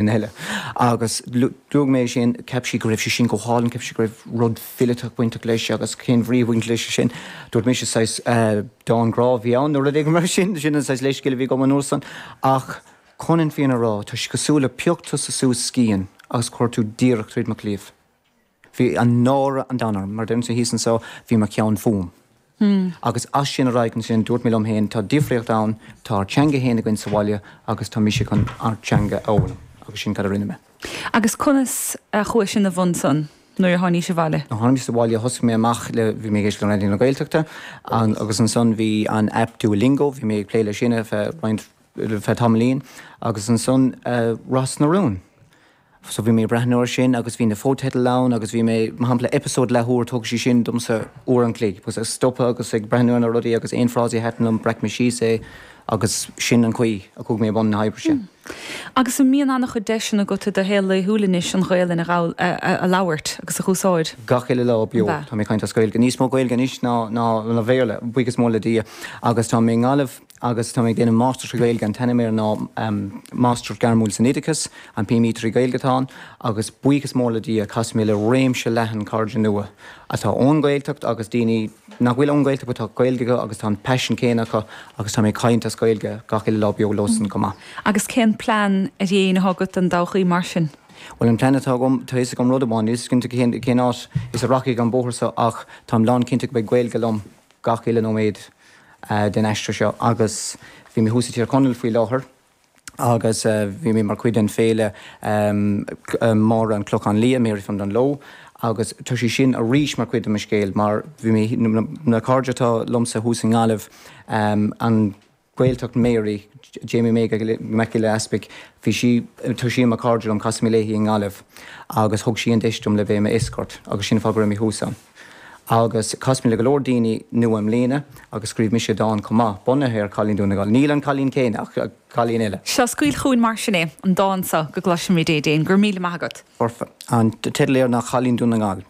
duine eile. Agus luaigh mé é sin, cheap sí go raibh sé sin go hálainn, cheap sí go raibh rud fileata bainteach leis agus cén bhrí a bhain leis sin. Dúirt mise, saghas dán grá a bhí ann nó rud éigin mar sin, sin an saghas leithscéal a bhí agam an uair san. Ach chun an fhírinne a rá, tá sé cosúil le phioc tusa suas scian agus chuir tú díreach tríd mo chliabh. Bhí an náire an domhain orm, mar a deirim sa thíos anso, bhí mo cheann fúm. Agus as sin ar aghaidh ansin, dúirt mé liom féin, tá difríocht ann, tá ár dteanga féin againn sa bhaile agus tá mise chun ár dteanga a fhoghlaim. Agus sin cad a rinne mé. Agus conas a chuaigh sin i mbun san nuair a tháinís abhaile? Nuair a tháinig mise abhaile, thosaigh mé amach le, bhí mé ag éisteacht le Raidió na Gaeltachta agus ansan bhí an aip Duolingo, bhí mé ag plé leis sin ar feadh roinnt, ar feadh tamaillín agus ansan Ros na Rún. So bhí mé ag breathnú ar sin agus bhí na fotheidil ann agus bhí mé, mar shampla, eipeasóid leathuair, thóg sé sin domsa uair an chloig, agus ag stopadh agus ag breathnú ar na rudaí agus aon frásaí a thaitin liom, bhreac mé síos é agus sin an chaoi a chuaigh mé i mbun na hoibre sin. Agus an mbíonn an-chuid deiseanna agat i do shaol laethúil anois an Ghaolainn a ghabh, a, a labhairt agus a chur chun úsáide? Gach uile lá beo tá mé ag caint as Gaeilge, níos mó Gaeilge anois ná, ná, ná Béarla, buíochas mór le Dia, agus tá mé i nGaillimh, agus tá mé ag déanamh Máistreacht sa Ghaeilge, an t-ainm air ná Máistreacht Gairmiúil san Oideachas, an PME trí Ghaeilge atá ann, agus buíochas mór le Dia, chas mé le réimse leathan cairde nua, atá ón nGaeltacht agus daoine nach bhfuil ón Ghaeltacht but tá Gaeilge acu agus tá an paisean céanna acu agus tá mé ag caint as Gaeilge gach uile lá beo leosan chomh maith. Agus cén plean ard-aidhm atá agat don dtodhchaí mar sin? Bhuel, an plean atá agam, tá fhios agam rud amháin, níl fhios cinnte cén áit is a rachaidh an bóthar so ach táim lán cinnte go mbeidh Gaeilge liom. gach uile nóiméad den aistear seo agus bhí mé thuas i dTír Chonaill faoi láthair agus bhí mé mar chuid den fhéile Máire an Clochán Liath, Mary from Dunloe agus tá sé sin arís mar chuid de mo scéal mar bhí mé, na cairde atá liomsa thuas i nGaillimh, an. Gaeltacht Mary, Jamie Mac Giolla Easpaig, bhí sí, tá sí i mór cairdiúil liom, chas mé léi i nGaillimh agus thug sí an deis dom le bheith mar escort agus sin an fáth go raibh mé thuas ann. Agus chas mé le go leor daoine nua i mbliana agus scríobh mise dán chomh maith, bunaithe ar Chailín Dún na nGall, níl an cailín céanna ach cailín eile. Seo, scaoil chugainn mar sin é, an dán seo go gcloisimid é. Déanfad, go raibh míle maith agat. Foirfe. An teideal air ná Cailín Dún na nGall.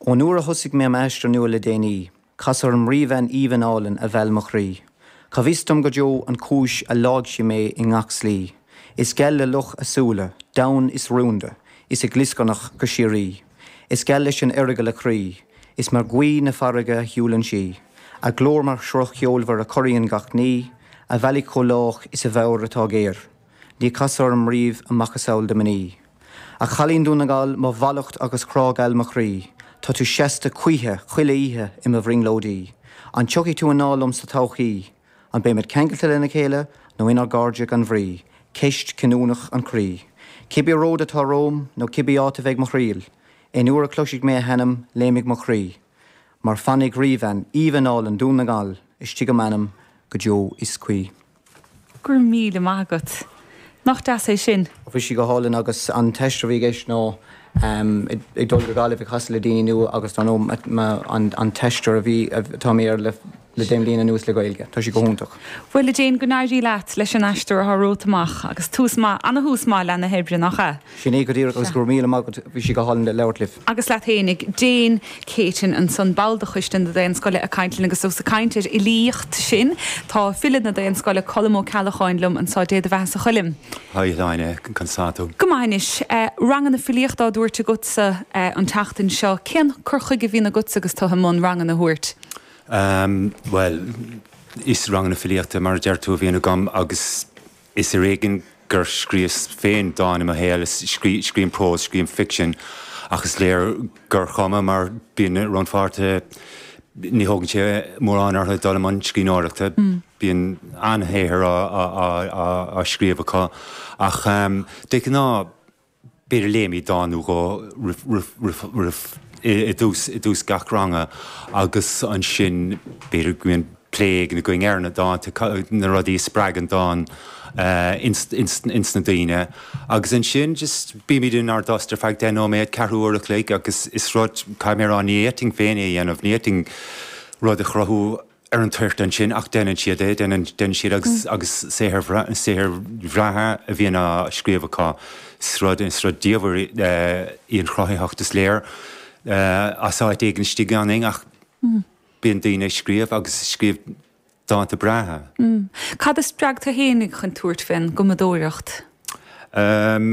Ón uair a thosaigh mé m'aistear nua le déanaí, Cas orm ríbhean aoibhinn álainn a mheil mo chroí, Cá bhfios dom go deo an chúis a leáigh sí mé i ngach slí, Is geal le loch a súile, donn is rúnda, is ag glioscarnach go síoraí, Is geal leis an Eargail a croí, is mar ghaoth na farraige a shiúlann sí, A glór mar shruth cheolmhar a chorraíonn gach ní, A bhealaigh chomh lách is a meabhair atá géar. Níor casadh orm riamh a macasamhail de mhnaoi. A chailín Dún na nGall, mo mhallacht agus grá geal mo chroí, Tá tú seasta choíche, chuile oíche, i mo bhrionglóidí. An dtiocfaidh tú anall liom sa todhchaí? An mbeimid ceangailte lena chéile, nó inár gcairde gan bhrí? Ceist chinniúnach an chroí. Cibé ród atá romham, nó cibé áit a bheidh mo thriall, Aon uair a chloisfidh mé a hainm, léimfidh mo chroí. Mar fanfaidh ríbhean aoibhinn álainn Dún na nGall, Istigh i m'anam go deo is choíche. Go raibh míle maith agat. Nach deas é sin? Bhí sí go hálainn agus an t-aistear a bhí i gceist ná ag dul go Gaillimh ag casadh le daoine nua agus dar ndóigh an t-aistear a bhí, atá mé air le deich mbliana anuas le Gaeilge. Tá sí go hiontach. Bhuel, a Jane, go n-éirí leat leis an aistear atá romhat amach agus tús maith, an-thús maith leath na hoibre, nach ea? Sin é go díreach agus go raibh míle maith agat, bhí sé go hálainn labhairt libh. Agus leat fhéinig. Jane Keating ansan, ball de choiste na Daonscoile ag caint linn agus os ag caint ar fhilíocht sinn, tá file na Daonscoile, Colm Ó Ceallacháin liom anso, Dé do bheathasa a Choilm. Haigh a Shláine, conas tá tú? Go maith anois. Ranganna filíochta á dtabhairt agatsa an tseachtain seo, cén cur chuige a bhíonn agatsa agus tú i mbun ranganna a thabhairt? Bhuel, is ranganna filíochta mar a deir tú a bhíonn agam agus Is ar éigin gur scríobhas féin dán i mo shaol. Scríobhaim prós, scríobhaim ficsean, ach is léir gur chuma mar bíonn rannpháirtithe, ní thógann sé mórán orthu dul i mbun scríbhneoireachta. Bíonn an-shaothar á scríobh acu, ach de ghnáth b'fhéidir léimid dán nó dhó i dtús gach ranga agus ansin b'fhéidir go mbíonn plé éigin againn ar na dánta, na rudaí a spreag an dán ins na daoine agus ansin just bímid inár dtost ar feadh deich nóiméad, ceathrú uair a chloig agus is rud, caithfidh mé a rá, ní fhéadfainn féin é a dhéanamh, ní fhéadfainn rud a chruthú. ar an toirt ansin ach deineann siad é, deineann siad agus agus saothair saothair bhreátha a bhíonn á scríobh acu, is rud is rud diamhair í an chruthaitheacht is léir as áit éigin istigh ionainn ach bíonn bíonn daoine ag scríobh agus ag scríobh dánta breátha. Cad a spreag tú fhéinig chun tabhairt faoin gcumadóireacht?